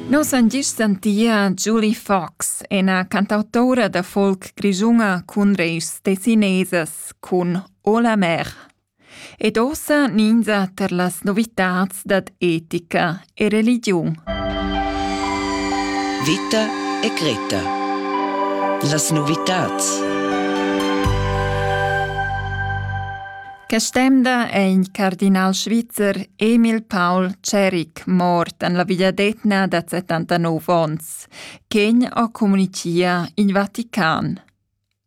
Nus han gist sentia Julie Fox, ina cantautora da folk grischuna cun reis tessinesas cun O la mer. Ed ossa ninza ter las novitats dad etica e religiun. Vita e Greta. Las novitats. Quest'emda è in cardinal svizzer Emil Paul Ceric mort en la vegliadetgna da 79 onns, ch'egn ha communitia in Vatican.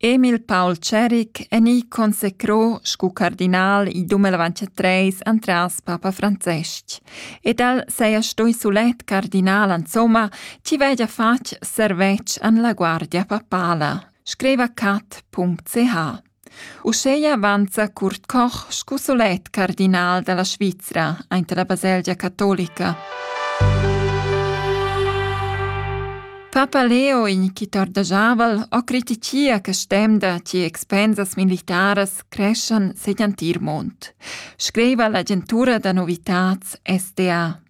Emil Paul Ceric è ni consecrò scu cardinal il 2023 antras Papa Francesc ed el seia stoi sulet cardinal insomma chi vegia fatg servetsch an la guardia papala, scriva cat.ch. Uscheia avanza Kurt Koch scu solet cardinal dalla Svizra aint la baselgia catolica. Papa Leo, in chi tordajaval, o criticia che stemda chi expensas militaras creschan segl antir mond, scriva l'agentura da novitats SDA.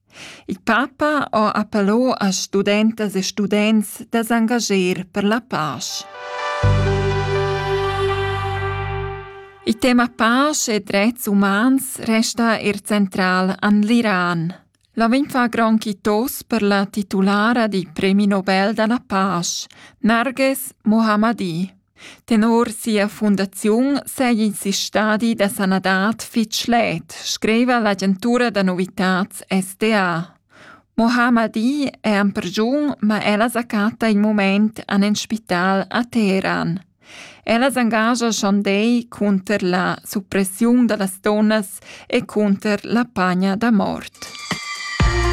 Il papa ho appello a studentas e students da s'angager per la pasch. Il tema pasch e drets umans resta er central an l'Iran. La vegn fa gran quitos per la titulara di Premi Nobel da la pasch, Narges Mohammadi. Tenor sia fundaziun seigi in stadi da sanadad fetg schlet, scriva l'agentura da novitads SDA. Mohammadi è en pregiun, ma ella sa chatta in mument en in spital a Teheran. Ella s'engascha schandei cunter la suppressiun da las donnas e cunter la pagna da mort.